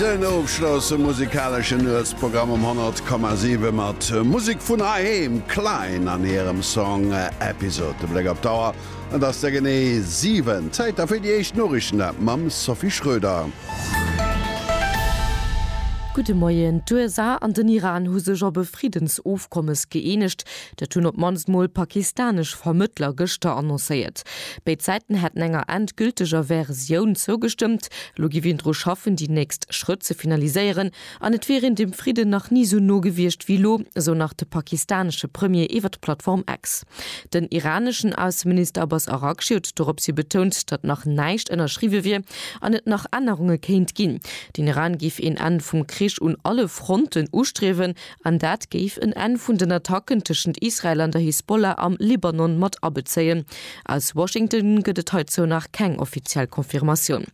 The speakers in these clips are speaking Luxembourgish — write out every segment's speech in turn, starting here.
Den ofschlosse musikaleschen Nuetsprogramm um 100,7 mat Musek vun heiheem, Klein an hirem Song Episode. De Bléck op d'Auer, et ass der genee 7. Zäit da fir déi éischt Noriichten mam Sophie Schröder. Gudde Moien. D'USA an den Iran hu sech op e Friddensofkommes gëeenegt, Dat hunn op d'mannst mol pakistanesch Vermëttler gëschter annoncéiert. Béid Säiten hätten enger endgülteger Versioun zougestëmmt. Elo géif een dru schaffen, déi nächst Schrëtt ze finaliséieren. An et wier een dem Fridden nach ni esou no gewiescht wéi elo, esou nach de pakistanesche Premier iwwer d'Plattform X. Den iraneschen Ausseminister Abbas Araghchi huet dorops hi betount, datt nach näischt ënnerschriwwe wier an et nach Ännerunge kéint ginn. Den Iran géif een Enn vum Krich un alle Fronten ustriewen An dat géif en Enn vun den Attacken tëschent Israel an der Hisbollah am Libanon mat abezéien. Aus Washington gëtt et heizou nach keng offiziell Confirmatioun.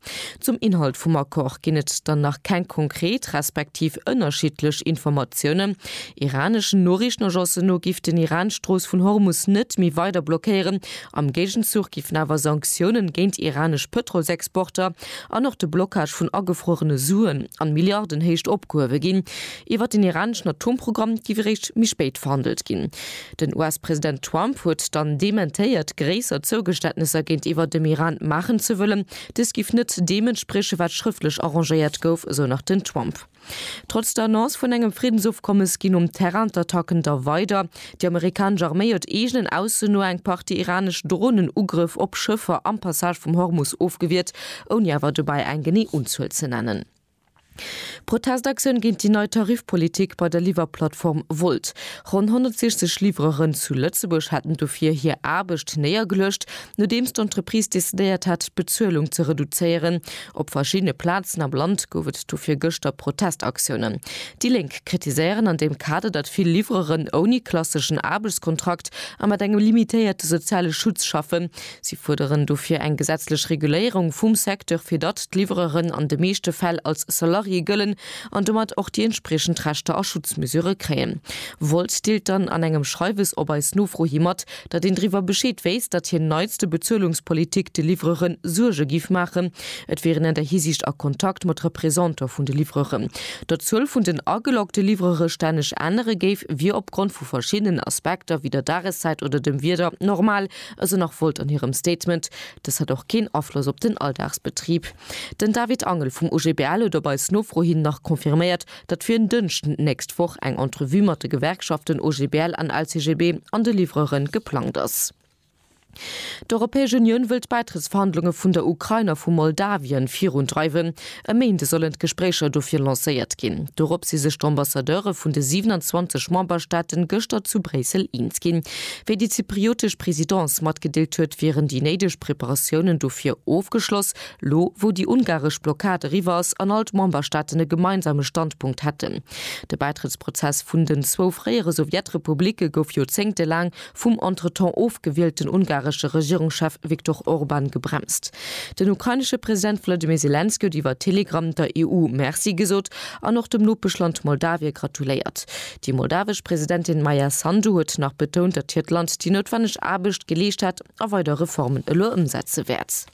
Zum Inhalt vum Accord ginn et dann nach keng konkret respektiv ënnerschiddlech Informatiounen. Iraneschen Noriichtenagencen no giff den Iran d'Strooss vun Hormus net méi weider blockéieren. Am Géigenzuch giffen awer Sanktiounen géint iranesch Pëtrolsexporter an och de Blockage vun agefruerene Suen an Milliardenhéicht opgehuewe ginn. Iwwer den iraneschen Atomprogramm giff eréischt méi spéit verhandelt ginn. Den US-President Trump huet dann dementéiert, gréisser Zougeständnesser géintiwwer dem Iran maachen ze wëllen. Dëst giff net deem entspriechen, wat schrëftlech arrangéiert gouf, esou nach den Trump. Trotz der Annonce vun engem Friddensofkommes ginn um Terrain d'Attacken da weider. Déi amerikanesch Arméi huet eegenen Ausso no eng Partie iranesch Dronen-Ugrëff op Schëffer am Passage vum Hormus ofgewiert, ouni awer dobäi eng genee Unzuel ze nennen. Protestaktioun géint déi nei Tarifpolitik bei der Liwwerplattform Wolt. Ronn 160 Liwwereren zu Lëtzebuerg haten dofir hir Aarbecht néiergeluecht, nodeems d'Entreprise decidéiert hat, d'Bezuelung ze reduzéieren. Op verschiddene Plazen am Land gouf et dofir gëschter Protestaktiounen. Déi Lénk kritiséieren an deem Kader, datt vill Liwwereren ouni klasseschen Aarbechtskontrakt a mat engem limitéierte soziale Schutz schaffen. Si fuerderen dofir eng gesetzlech Reguléierung vum Secteur, fir datt d'Liwwereren an de meeschte Fäll als Salarié gëllen an domat och déi entspriechend Rechter a Schutzmesure kréien. Wolt deelt dann an engem Schreiwes op eis Nofro hi mat, datt een driwwer Bescheed wéisst, datt hir neitste Bezuelungspolitik de Liwwerere Suerge géif maachen. Et wier een an där Hisiicht a Kontakt mat Representantë vun de Liwwerere. Datt d'Zuel vun den ageloggte Liwwerere stänneg ännere géif, wier opgrond vu verschiddenen Aspekter, wéi der Dageszäit oder dem Wieder, normal. Esou nach Volt an hirem Statement. Dëst hätt och keen Afloss op den Alldagsbetrib. Den David Angel vum OGBL huet op eis Nofro hin nach confirméiert, datt fir en Dënschden d'nächst Woch eng Entrevue mat de Gewerkschaften OGBL an LCGB an de Livreuren geplangt ass. D'Europäesch Unioun wëll d'Bäitrëttsverhandlunge vun der Ukrain a vu Moldawien virundreiwen. E Méinde sollen d'Gespréicher dofir lancéiert ginn. Dorop si sech d'Ambassadeure vun de 27 Memberstaaten gëschter zu Bréissel eens ginn. Wéi déi zypriotesch Presidence matgedeelt huet, wieren déi néideg Preparatiounen dofir ofgeschloss, lo wou déi ungaresch Blockad eriwwer ass an all d'Memberstaaten e gemeinsame Standpunkt hätten. De Bäitrëttsprozess vun den zwou fréiere Sowjetrepublicke gouf joerzéngtelaang vum entretemps ofgewielten ungaresche Regierungschef Viktor Orban gebremst. Den ukrainesche President Wolodymyr Selenskyj huet iwwer Telegram der EU Merci gesot an och dem Nopeschland Moldawie gratuléiert. Déi moldawesch Presidentin Maia Sandu huet nach betount, datt hiert Land déi noutwenneg Aarbecht geleescht hätt a weider Reformen elo ëmsetze wäert.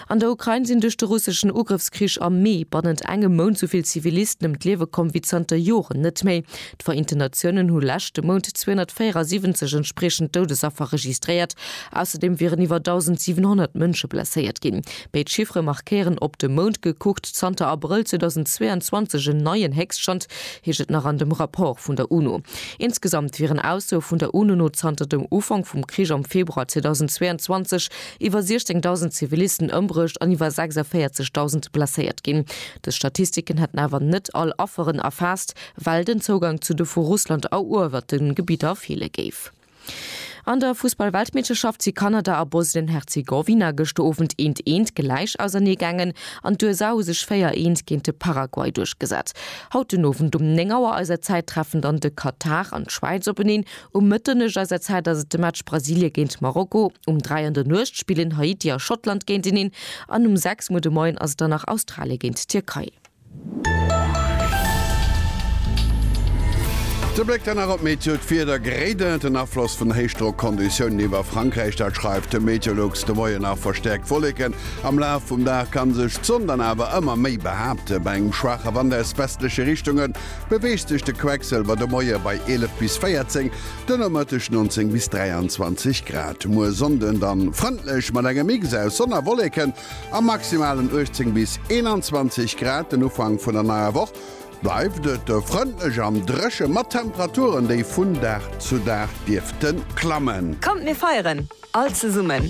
An der Ukrain sinn duerch de russeschen Ugrëffskrich am Mee bannent engem Mount sou vill Zivilisten ëm d'Liewe komm wéi zanter Joren net méi. D'Vereenten Natiounen hu leschte Mount 274 entspriechend Doudesaffer registréiert. Ausserdeem wieren iwwer 1.700 Mënsche blesséiert ginn. Béid Chiffere markéieren op de Mount gekuckt zanter Abrëll 2022 en neien Héchststand, heescht et nach an dem Rapport vun der UNO. Insgesamt wieren Aussoe vun der UNO no zanter dem Ufank vum Krich am Februar 2022 iwwer 16.000 Zivilisten ëmbruecht an iwwer 46.000 blesséiert ginn. Dës Statistiken hätten awer net all Afferen erfaasst, well den Zougang zu de vu Russland eruewerte Gebidder feele géif. An der Fussball-Weltmeeschterschaft si Kanada a Bosnien-Herzegowina gëschter Owend eent eent gläich ausernee gaangen an d'USA hu sech 4 eent géint de Paraguay duerchgesat. Haut den Owend um 9 Auer eiser Zäit treffen dann de Katar an d'Schwäiz openeen. Um Mëtteneg eiser Zäit ass et de Match Brasilie géint Marokko, um 3 an der Nuecht spillen Haiti a Schottland géinteneen an um 6 Muer de Moien ass et dann nach Australie géint d'Tierkei. De Bléck dann nach op d'Meteo, D'Wieder grédelt, den Afloss vun Héichdrockonditiounen iwwer Frankräich, dat schreift de Meteolux. De Moien nach verstäerkt Wolleken, am Laf vum Dag ka sech d'Sonn dann awer ëmmer méi behaapten, bei engem schwaache Wand aus westleche Richtungen beweegt sech de Quecksëlwer de Moie bei 11 bis 14, de Nomëtteg 19 bis 23 Grad. Muer Sonnden dann frëndlech mat engem Mix aus Sonn a Wolleken a maximalen 18 bis 21 Grad. Den Ufank vun der neier Woch bleift et frëndlech an dréche mat Temperaturen, déi vun Dag zu Dag dierfte klammen. Kommt mir feieren! All zesummen!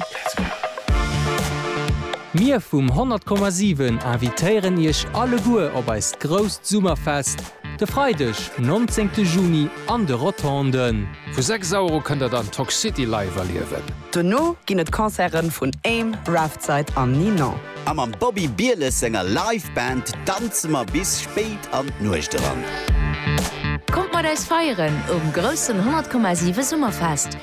Mir vum 100,7 invitéieren Iech alleguer op eist grousst Summerfest de Freideg, 19 Juni an de Rotonden. Vu 6 Auer u kënnt der dann Toxcity live erliewen. Dono ginn et Concerten vun Aim, Raftside an Ninon. A mam Bobby Bieles senger Live Band danze mer bis spéit an d'Nuecht eran. Kommt mat eis feieren um groussen 100,7 Summerfest!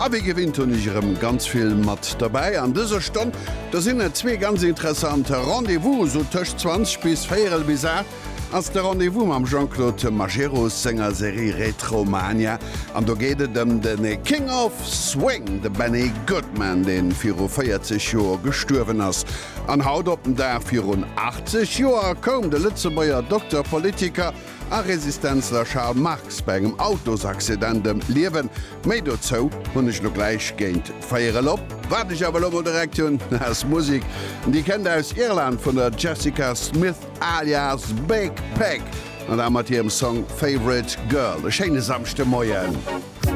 A wéi gewinnt hunn ech erëm ganz vill mat dobäi an dëser Stonn. Do sinn der zwee ganz interessant Rendez-vous, sou tëscht 20 bis véierel bis 8 ass de Rendez-vous mam Jean-Claude Majerus senger Serie Retromania an do geet et ëm de King of Swing, de Benny Goodman, dee viru 40 Joer gestuerwen ass. An haut op den Dag virun 80 Joer koum de Lëtzebuerger Dokter, Politiker, A Resistenzler Charles Marx bei engem Autosaccident ëm d'Liewen. Méi dozou hunn ech lo gläich géint véier elop. Wat ech awer lo mol direkt hunn ass Musik. Déi kënnt aus Irland vun der Jessica Smith alias Big Pig an da mat hirem Song Favourite Girl. E schéine Samschdemoien.